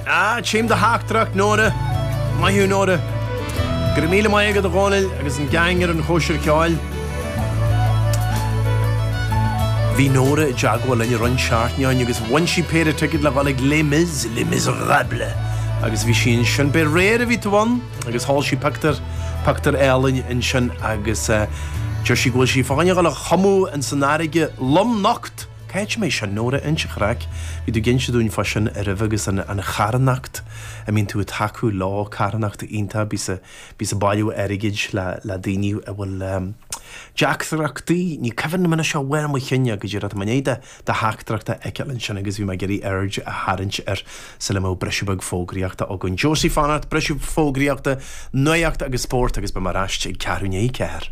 Ah, tchím do theachtaireacht, a, Nóra. Maith thú, a Nóra. Go raibh míle maith agat, a Dhónaill, agus an geaing ar An Chóisir Cheoil. Bhí Nóra i dteagmháil linn i rith na seachtaine agus bhain sí péire ticéad le ghabháil chuig Les Mis, Les Miserables, agus bhí sí ansin. B'fhéidir aréir a bhí tú ann agus thóg sí pictiúr, pictiúr álainn ansin agus deir sí go bhfuil sí fá choinne ghabháil a thumadh ins an fharraige lomnocht. Caidé sin, a Nóra, an-chraic, bhí tú ag inse dúinn fá sin roimhe agus an, an charthanacht a mbíonn tú a' tacú leo, carthanacht iontach, bíos a', bíos a' bailiú airgid le, le daoine a bhfuil ehm teachtaireachtaí, ní cuimhin liom anois de bharr mo chinn, go díreach i ndiaidh do, do theachtaireacht a fheiceáil ansin agus bhí mé ag iarraidh aird a tharraingt air sula mbeadh briseadh beag fógraíochta againn. Josie fanacht, briseadh fógraíochta, nuaíocht agus spórt agus beidh muid ar ais ag ceathrú i ndiaidh a ceathair.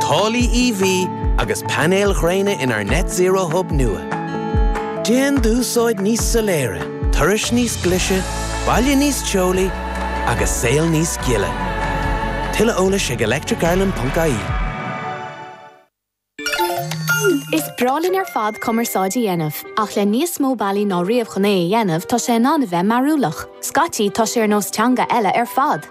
Taraifí EV agus painéil ghréine inár Net Zero Hub nua. Déan d'úsáid níos soiléire, turais níos glise, baile níos teolaí agus saol níos gile. Tuilleadh eolais ag electricireland.ie. Is breá linn ar fad cumarsáid a dhéanamh, ach le níos mó bealaí ná riamh chun é a dhéanamh, tá sé in ann a bheith mearúlach. Scaití, tá sé ar nós teanga eile ar fad.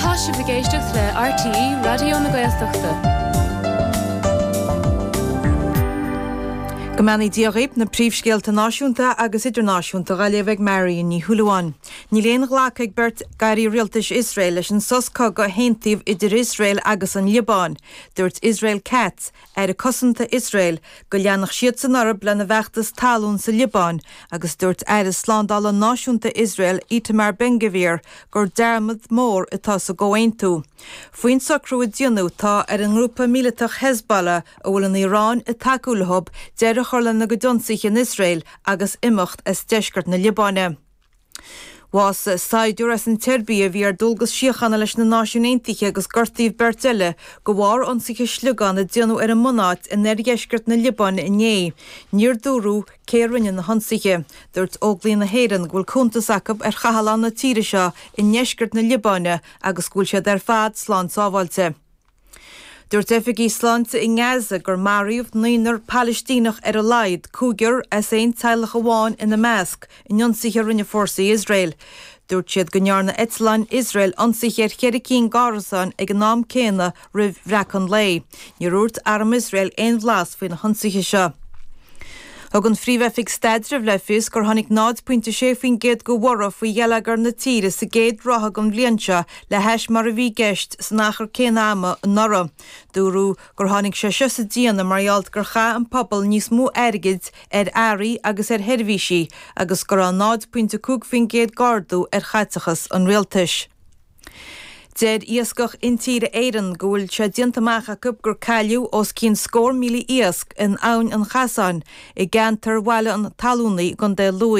Tá sibh ag éisteacht le RTÉ Raidió na Gaeltachta. Go mbeannaí Dia dhaoibh na príomhscéalta náisiúnta agus idirnáisiúnta á léamh ag Marion Ní Shúilleabháin. Níl aon ghlacadh ag beirt d'airí rialtais Iosrael leis an sos cogaidh a haontaíodh idir Iosrael agus an Liobáin. Dúirt Israel Katz, Aire Cosanta Iosrael, go leanfadh siadsan orthu lena bhfeachtas talún sa Liobáin agus dúirt Aire Slándála Náisiúnta Iosrael Itamar Ben-Gvir gur dearmad mór atá sa gcomhaontú. Faoin socrú a déanadh tá ar an ngrúpa míleatach Hezbollah, a bhfuil an Iaráin ag tacú leofa, deireadh a chur lena gcuid ionsaithe in Iosrael agus imeacht as deisceart na Liobáine. Bhásaigh saighdiúir as an tSeirbia a bhí ar dualgas síochána leis na Náisiúin Aontaithe agus gortaíodh beirt eile de bharr ionsaithe sliogán a déanadh ar a mbunáit in oirdheisceart na Liobáine inné. Níor dúradh cé a rinne na hionsaithe. Dúirt Óglaigh na hÉireann go bhfuil cuntas acu ar chathlán na tíre seo i ndeisceart na Liobáine agus go bhfuil siad ar fad slán sábháilte. Dúirt oifigigh sláinte i nGaza gur maraíodh naonar Palaistíneach ar a laghad, cúigear as aon teaghlach amháin ina measc, in ionsaithe a rinne fórsaí Iosrael. Dúirt siad go ndearna eitleáin Iosrael ionsaithe ar cheithre cinn d'árasáin ag an am céanna roimh bhreacadh an lae. Níor dhúirt arm Iosrael aon bhlas faoi na hionsaithe seo. Thug an Phríomh-Oifig Staidrimh le fios gur tháinig 0.6% de bhorradh faoi gheilleagar na tíre sa gcéad ráithe den bhliain seo le hais mar a bhí i gceist san achar céanna ama anuraidh. Dúradh gur tháinig sé seo sa déanamh mar gheall gur chaith an pobal níos mó airgid ar earraí agus ar sheirbhísí agus go raibh 0.5% d'ardú ar chaiteachas an rialtais. Deir Iascach Intíre Éireann go bhfuil sé déanta amach acu gur cailleadh os cionn scór míle iasc in Abhainn an Chasáin i gceantar Bhaile an Tallúnaigh i gContae Lú.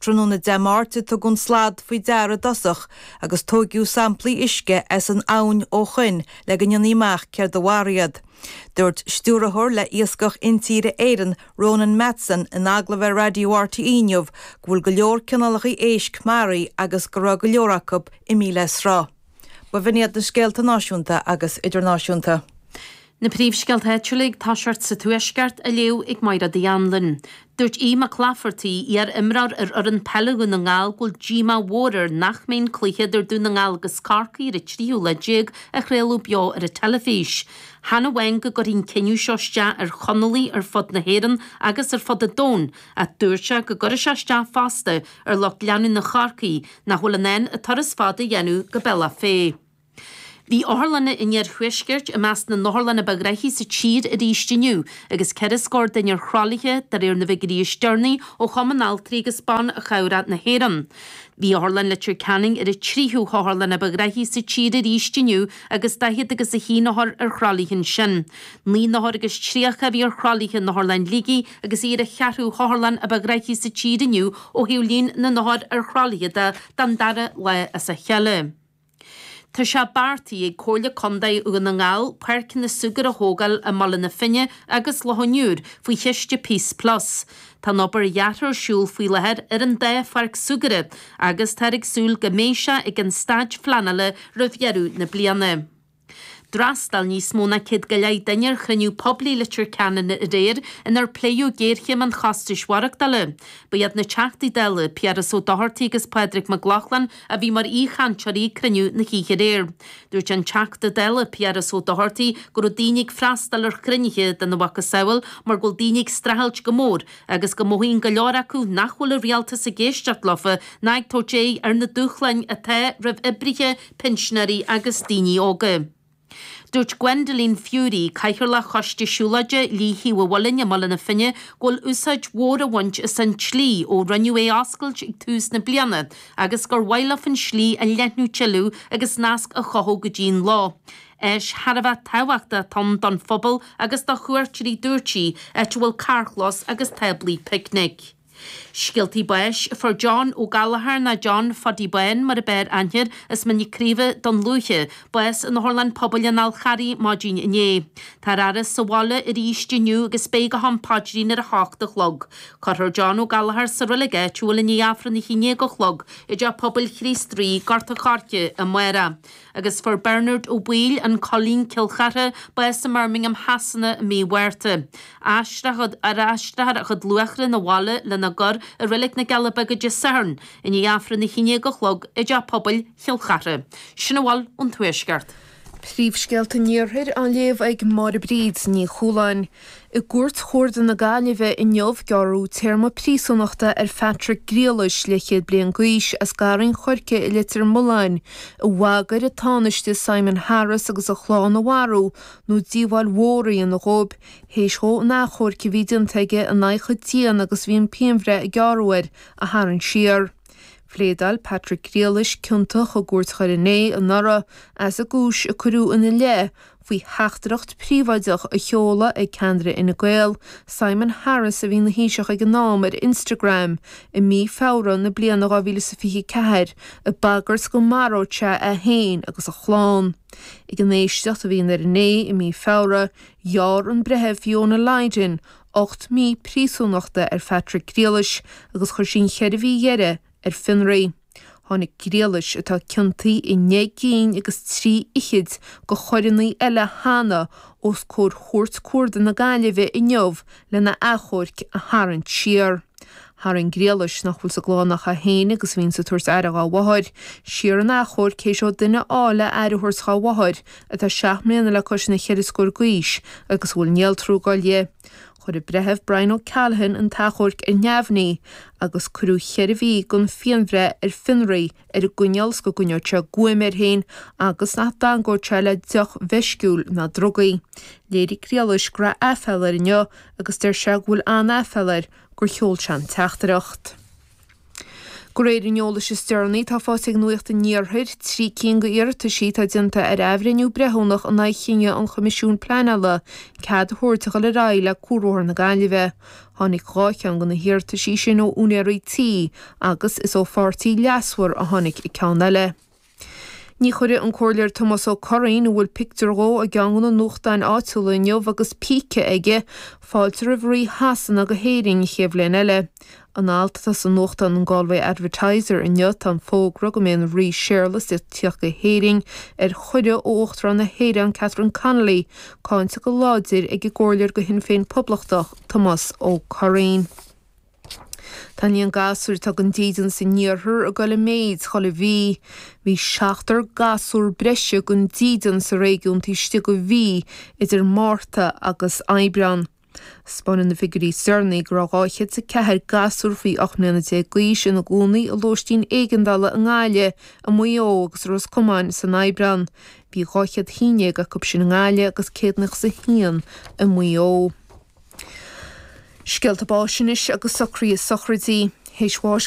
Tráthnóna Dé Máirt a tugadh an slad faoi deara i dtosach agus tóigeadh samplaí uisce as an abhainn ó shoin le go ndéanfaí amach céard a mharaigh iad. Dúirt Stiúrthóir le Iascach Intíre Éireann, Ronan Matson, in agallamh ar Raidió RTÉ inniu go bhfuil go leor cineálacha éisc maraithe agus go raibh go leor acu imithe le sruth. B'in iad na scéalta náisiúnta agus idirnáisiúnta. Na príomhscéalta áitiúla ag toiseacht sa Tuaisceart, á léamh ag Máire Uí Anluain. Dúirt Aodh Mac Laifeartaigh, iar-imreoir ar fhoireann peile Dhún na nGall, go bhfuil díomá mhór air nach mbeidh an cluiche idir Dún na nGall agus Corcaigh ar an tríú lá déag á chraoladh beo ar an teilifís. Chan amháin go gcuirfidh an cinneadh seo isteach ar Chonallaigh ar fud na hÉireann agus ar fud an domhain, ach dúirt sé go gcuirfidh sé isteach fosta ar lucht leanúna Chorcaí nach bhfuil in ann an turas fada a dhéanamh go Bealach Féich. Bhí otharlanna an Iarthuaiscirt i measc na n-otharlanna ba ghraithí sa tír arís inniu agus ceithre scór duine ar thralaithe, de réir na bhfigiúirí is deireanaí ó Chumann Altraí agus Ban Chabhrach na hÉireann. Bhí Otharlann Leitir Ceanainn ar an tríú hotharlann ba ghraithí sa tír arís inniu agus daichead agus a haon othar ar thralaithe ansin. Naoi n-othar agus tríocha a bhí ar thralaithe in Otharlann Shligigh agus í ar an cheathrú hotharlann a ba ghraithí sa tír inniu ó thaobh líon na n-othar ar thralaithe de don dara lá as a chéile. Tá sé beartaithe ag Comhairle Contae Dhún na nGall páirceanna súgartha a thógáil i mBaile na Finne agus Loch an Iúir faoi chiste Peace Plus. Tá an obair dheartha ar siúl faoi láthair ar an dá pháirc súgartha agus táthar ag súil go mbeidh sé ag an staid phleanála roimh dheireadh na bliana. D'fhreastail níos mó ná céad go leith duine ar chruinniú poiblí i Leitir Ceanainn aréir inar pléadh géarchéim an chostais mhaireachtála. Ba iad na Teachtaí Dála, Piaras Ó Dochartaigh agus Pádraig Mac Lochlainn, a bhí mar aoichainteoirí ag cruinniú na hoíche aréir. Dúirt an Teachta Dála Piaras Ó Dochartaigh go raibh daoine ag freastal ar chruinnithe de na mhacasamhail mar go bhfuil daoine ag streachailt go mór agus go mothaíonn go leor acu nach bhfuil an Rialtas ag éisteacht leofa ná ag tabhairt aghaidh ar na dúshláin atá roimh oibrithe pinsinéirí agus daoine óga. Dúirt Gwendoline Furey, Cathaoirleach Choiste Siúlóide Shlí Thaobh an Mhuilinn i mBaile na Finne go bhfuil úsáid mhór á bhaint as an tslí ó rinneadh é a oscailt ag tús na bliana agus gur mhaith leofa an slí a leathnú tuilleadh agus nasc a chothú go dtí'n loch. Áis thar a bheith tábhachtach atá ann don phobal agus do chuairteoirí dúirt sí, áit a bhfuil carrchlós agus táblaí picnice. Scéaltaí báis. Fuair John Ó Gallchóir nó John Phody Bán mar a b'fhearr aithne air as Mín na Craoibhe, Dún Lúiche, bás in Otharlann Pobail an Fháil Charraigh maidin inné. Táthar ar ais sa bhaile arís inniú agus beidh go ham paidrín ar a hocht a chlog. Cuirfear John Ó Gallchóir sa reilig áitiúil i ndiaidh Aifreann a hAon Déag a chlog i dteach pobail Chríost Rí, Gort an Choirce, amárach. agus fuair Bearnard Ó Baoill, An Coillín, Cill Chartha, bás i mBirmingham Shasana i mí Mhárta. Aistreofar a chuid luatha 'na bhaile lena gcur i Reilig na gCealla Beaga Dé Sathairn i ndiaidh Aifreann a hAon Déag a Chlog i dTeach Pobail Chill Chartha. Sin a bhfuil ón Tuaisceart. Príomhscéalta an Iarthair á léamh ag Máire Bríd Ní Chualáin. I gCúirt Chuarda na Gaillimhe inniu, gearradh téarma príosúnachta ar Phatrick Griallais leathchéad bliain d'aois as Garraí an Choirce i Leitir Mealláin a bhagair an Tánaiste Simon Harris agus a chlann a mharú nó díobháil mhór a dhéanamh dhóibh théis dhó an t-achomharc a bhí déanta aige in aghaidh a dhéine agus bhí an phianbhreith a gearradh air a tharraingt siar. Phléadáil Patrick Griallais ciontach i gCúirt Dhoire an Fhéich anuraidh as an gcúis a cuireadh ina leith faoi theachtaireacht phríobháideach a sheoladh ag ceannaire Fhine Gael, Simon Harris, a bhí ina Thaoiseach ag an am, ar Instagram i mí Feabhra na bliana 2024 ag bagairt go maródh sé é féin agus a chlann. Ag an éisteacht a bhí i nDoire an Fhéich i mí Feabhra, ghearr an Breitheamh Fiona Lydon ocht mí príosúnachta ar Phatrick Griallais agus chuir sí an cheithre mhí dheiridh ar fionraí. Tháinig Griallais, atá ciontaithe i naoi gcinn agus trí fhichid de choireanna eile cheana, os comhair Chúirt Chuarda na Gaillimhe inniu lena achomharc a tharraingt siar. Tharraing Griallais, nach bhfuil sa gclann ach é féin agus a bhíonn ag tabhairt aire dhá mháthair, siar an t-achomharc théis dó duine a fháil le aire a thabhairt dhá mháthair atá seacht mbliana le cois na ceithre scór d'aois agus a bhfuil néaltrú ag goil di. Chuir an Breitheamh Brian O'Callaghan an t-achomharc ar neamhní agus cuireadh cheithre mhí den phianbhreith ar fionraí ar an gcoinníoll is go gcoinneodh sé guaim air féin agus nach dteangódh sé le deoch mheisciúil ná drugaí. Léirigh Griallais go raibh aiféala air inniu agus deir sé go bhfuil an-aiféala air gur sheol sé an teachtaireacht. Go réir an eolais is deireanaí atá faighte ag Nuacht an Iarthair trí cinn d'iarrataisí atá déanta ar athbhreithniú breithiúnach in aghaidh chinneadh an Choimisiúin Pleanála cead a thabhairt a dhul ar aghaidh le Cuarbhóthar na Gaillimhe. Tháinig dhá cheann de na hiarrataisí sin ó úinéirí tí agus is ó pháirtí leasmhar a tháinig ceann eile. Ní chuirfidh an Comhairleoir Tomás Ó Curraoin, a bhfuil pictiúr dhó i gceann de na nuachtáin áitiúla inniu agus píce aige, fáilte roimh Rí Shasana go hÉirinn an chéad bhliain eile. In alt atá sa nuachtán an Galway Advertiser inniu tá an fógra go mbeidh an Rí Séarlas le tíocht go hÉirinn ar chuireadh ó Uachtarán na hÉireann Catherine Connolly cáinte go láidir ag an gComhairleoir de Shinn Féin Poblachtach Tomás Ó Curraoin. Tá líon na ngasúr atá gan dídean san Iarthar ag dul i méid chuile mhí. Bhí seachtar gasúr breise gan dídean sa réigiún taobh istigh de mhí idir Márta agus Aibreán. 'Spáineann na figiúirí is deireanaí go raibh 204 gasúr faoi 18 mbliana d'aois ina gcónaí i lóistín éigeandála i nGaillimh, i Maigh Eo agus i Ros Comáin san Aibreán. Bhí 211 acu sin i nGaillimh agus 101 i Maigh Eo. Scéalta báis anois agus socruithe sochraidí. Théis bháis.